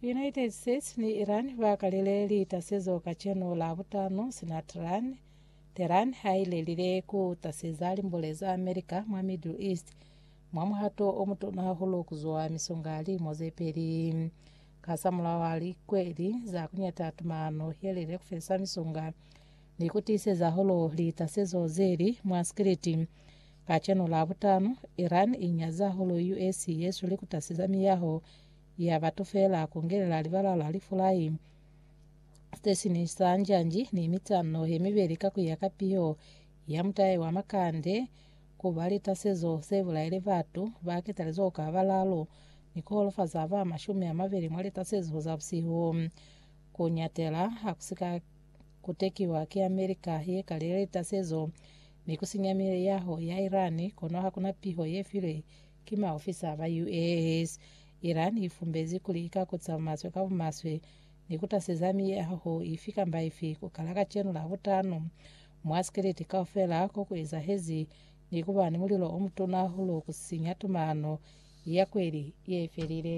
United States ni Iran ba kalile litasezo kacenu la butano sina Tehran, Tehran ha i lelile ku taseza limbole za America mwa Middle East mwa muhato o mutuna hahulu ku zwa misonga limo ze peli. Kasamulaho ha likweli za kuñata tumano yelile ku felisa misonga ni ku tiiseza hulu litasezo zeli mwa sikiliti, Kacenu Labutano, Iran i nyaza hulu US ye su likutasiza miyaho ya batu fela ku ngelela libala la lifulai se sini sa njanji ni mitano ye mibeli ka ku ya ka piho ya mutai wa makande ku ba litasezo se bulaile batu ba ketalezo ka balalu ni ku holofaza ba mashumi a mabeli mwa litasezo za busihu. Ku nyatela ha ku si ka Ku tekiwa ki America ye ka leleta sezo ni ku sinya miyaho ya Iran, kono ha ku na piho ye filwe ki maofisa ba US. Iran i fumbezi kuli i ka kuca maswe ka bumaswe ni ku taseza miyaho ifi kamba ifi ku kala kacenu Labutanu mwa sikiliti kaufela ko ku ezahezi ni ku ba ni mulilo o mutuna hahulu ku sinya tumano ya kweli ye felile.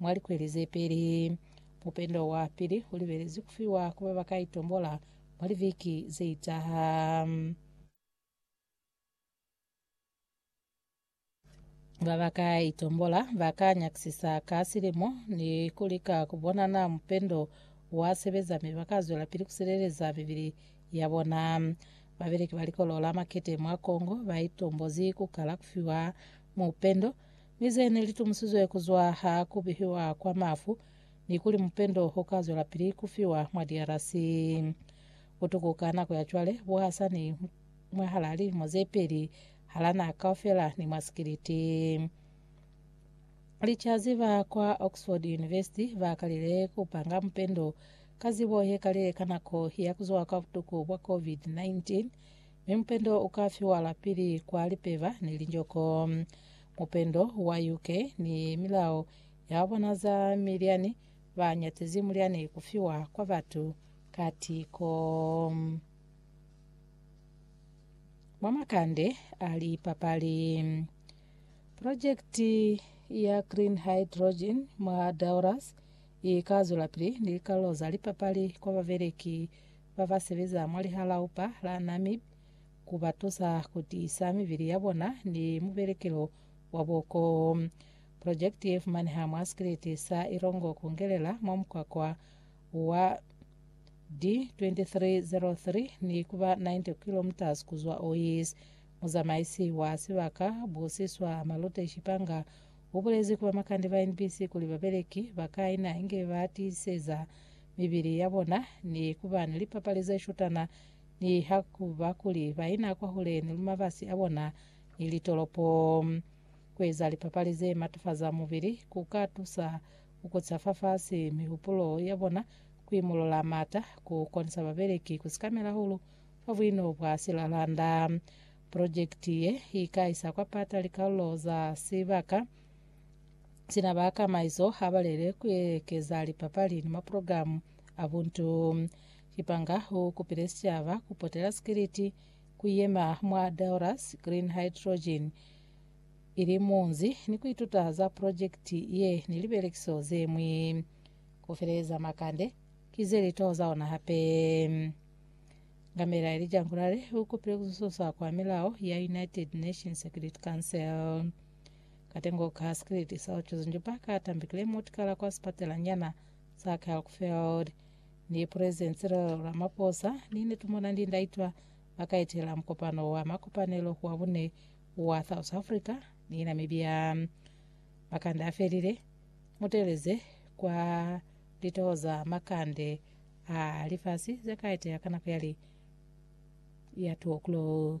Mwa likweli ze peli, mupendo wa pili u libelezwi ku fiwa ku ba ba ka itombola mwa liviki ze itaha. Ba ba ka itombola ba ka nyakisisa ka silimo ni ku lika ku bona naa mupendo wa sebeza mi ba ka zwelapili ku sileleza mibili ya bona. Babeleki ba Likolo la Makete mwa Congo ba itombozi ku kala ku fiwa mupendo. Mi ze ne li tumusizwe ku zwa ha ku bihiwa kwa mafu, ni kuli mupendo u ka zwelapili ku fiwa mwa DRC. Butuku ka nako ya cwale bu hasa ni mwahal'a lilimo ze peli, hal'a naha kaufela ni mwa sikiliti. Licazi ba kwa Oxford University ba kalile ku panga mupendo ka zibo ye kalile ka nako ya ku zwa kwa butuku bwa COVID-19, Mi mupendo uka fiwala pili kwa lipeba ni linjoko. Mupendo wa UK ni milao ya bona za milyani ba nyatizi mulyani ku fiwa kwa batu ka tiko. Mwa makande a lipapali, projekiti ya Green Hydrogen mwa Dauras ika zwelapili ni likalolo za lipapali kwa babeleki ba ba sebeza mwa lihalaupa la Namib ku ba tusa ku tiisa mibili ya bona ni mubelekelo wa boko. Projekiti ye fumaneha mwa sikiliti sa Irongo Kungelela mwa mukwakwa wa D2303 ni ku ba 90 kilometres ku zwa Ois. Muzamaisi wa sibaka, Busiswa Malute Shipanga, u bulezi ku bamakande ba NBC kuli babeleki ba ka ina inge ba tiiseza mibili ya bona ni ku ba ni lipapali ze shutana ni ha ku ba kuli ba ina kwahule ni mabasi a bona ni litolopo. Ku eza lipapali ze matafaza mubili ku ka tusa ku kuca fafasi mihupulo ya bona, ku imolola m'ata, ku konisa babeleki ku sikamela hahulu fa buino bwa silalanda. Projekiti ye i ka isa kwa pata likalulo za sibaka Sina ba kamaiso ha ba lele ku ekeza lipapali ni maprogramu a buntu. Kipanga u kupile sicaba ku potela sikiliti ku yema mwa Daurus Green Hydrogen ili munzi ni ku ituta za projekiti ye ni libelekiso ze ñwi. Ku feleza makande ki ze litoho za ona hape. Ngamela Elijah Nkulale u kupile ku sususa kwa milao ya United Nations Security Council. Katengo ka sikiliti sa ku cuza njupa ka tambikile mutu kala kwa sipatelanyana sa Kalkfeld ni President Cyril Ramaphosa ni ne tumona ndi ndaitwa ba ka etela mukopano wa makopanelo wa bune wa South Africa ni Namibia. Makande a felile muteleze kwa litoho za makande a lifasi ze ka etela ka nako ya li ya 2 o'clock.